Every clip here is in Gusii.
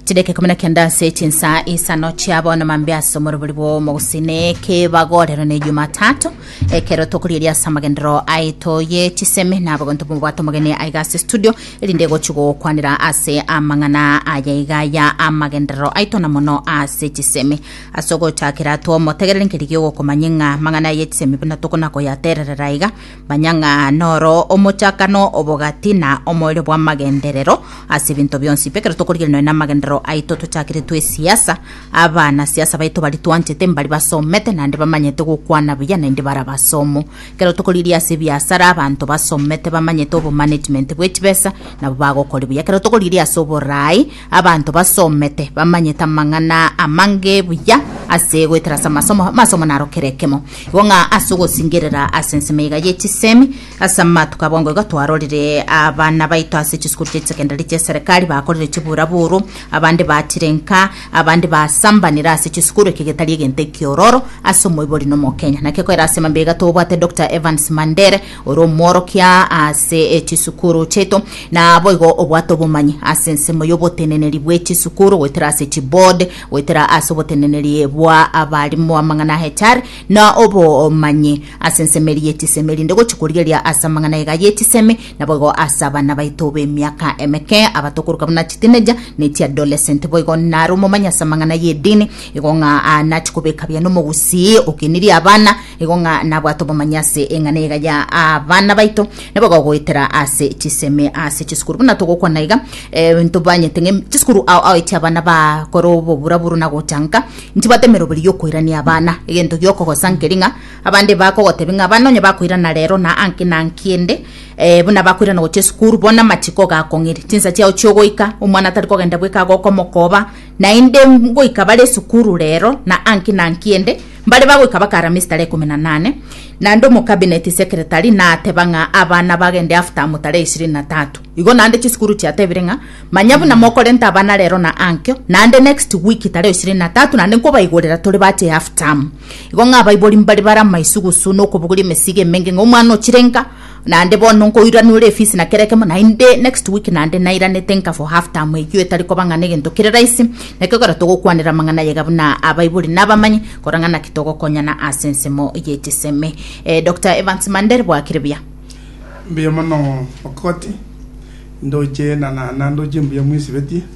chideka ikomi na kenda ase chinsa isano chia bono mambe ase omorobori bw'omogusine kebagorero ne jumatatu ekero tokorieria ase amagendero aito ye chisemi na abagonto bomobwate omogeni aiga ase studio erinde gochi gokwanera ase amang'ana aya iga ya amagenderero aito na mono ase chisemi ase ogochakera twomotegerere nkeri giogokomanya ng'a amang'ana ye chisemi buna tokona koyatererera iga Manya ng'a noro omochakano obogati na omoerio bw'amagenderero ase ebinto bionsi. Ekero tokorigereria nonya namagenderero aito tochakeretwe esiasa, abana siasa baito bari twanchete mbari basomete naende bamanyete gokwana buya naende bara abasomu. Ekero tokorigereria ase ebiasara abanto basomete bamanyete obomanagement bw'echibesa nabo bagokori buya. Ekero tokorigereria ase oboraai Abanto basomete bamanyete amang'ana amange buya ase goetera ase amasomo, amasomo naro kera ekemo. Igo ng'a ase ogosingerera ase ensemo eye iga ye chisemi, ase amatuko abongo iga twarorire abana baito ase chisukuru chia chisekendari chia eserekari bakorire chiburaburu, abande batire nka, abande basambanire ase chisukuru, eke getari egento ekiororo ase omoibori na Omokenya. Naki koera ase mambia iga tobwate Doctor Evans Mandere, Ore omworokia ase chisukuru chiaito, na boigo obwate obomanyi ase ensemo y'oboteneneri bwe chisukuru, goetera ase chiboard, goetera ase oboteneneri bwa abarimu, amang'ana HR, na obomanyi ase ensemo eri ye chisemi, erinde gochia korigereria ase amang'ana iga ye chisemi, na boigo ase abana baito b'emiaka emeke, abato okoroka buna chitineja, ne chiadolescent. Boigo nare omomanyi ase amang'ana y'edini, igo ng'a nachi kobeka biane omogusii okenirie abana, Igo ng'a nabwate obomanyi ase eng'ana eye iga ya abana baito, nigo bagogoetera ase chisemi ase chisukuru. Buna togokwana iga, eh, ntobanyete ng'a em- chisukuru ao aoetie abana bakore oboburaburu na gochanka, ntibwate emeroberi yokoirania abana. Egento giokogosa nkeri ng'a abande bakogotebia ng'a abana onye bakoirana rero na anki na anki ende, eh, buna bakoirana gochia esukuru, bono amachiko gakong'iri, chinsa chiao chiogoika, omwana tari kogenda bweka agokomokoba, Naende ngoika bare esukuru rero na anki na anki ende, mbare bagoika bakara ameesi tara ikomi na nane, naende omocabinet secretary nateba ng'a abana bagende half term tara ishirini na tatu. Igo naende chisukuru chiatebire ng'a manya buna mokorenta abana rero na ankio, naende next week tara ishirini na tatu naende nkobaigorera tore bache half term. Igo ng'a abaibori mbare bare amaisugusu na okobogoria emesigo emenge ng'a omwana ochirenka Naende bono nkoiraneore efisi na kera ekemo, naende next week naende nairanete nka for half term eyio etari koba ng'a negento kere raisi, nakio ekero togokwanera amang'ana ayaiga buna abaibori na abamanyi, kora ng'a naki togokonyana ase ensemo ye chisemi. Eh, Doctor Evans Mandel, bwakire buya. Mbuya mono Okoti, ndoche na na na ndoche mbuya mwesibetie.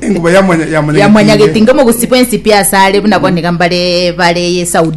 Enguba ya mwanyagetinga omogusii bw'ensipi asare buna bonde iga mbare bare Saudi.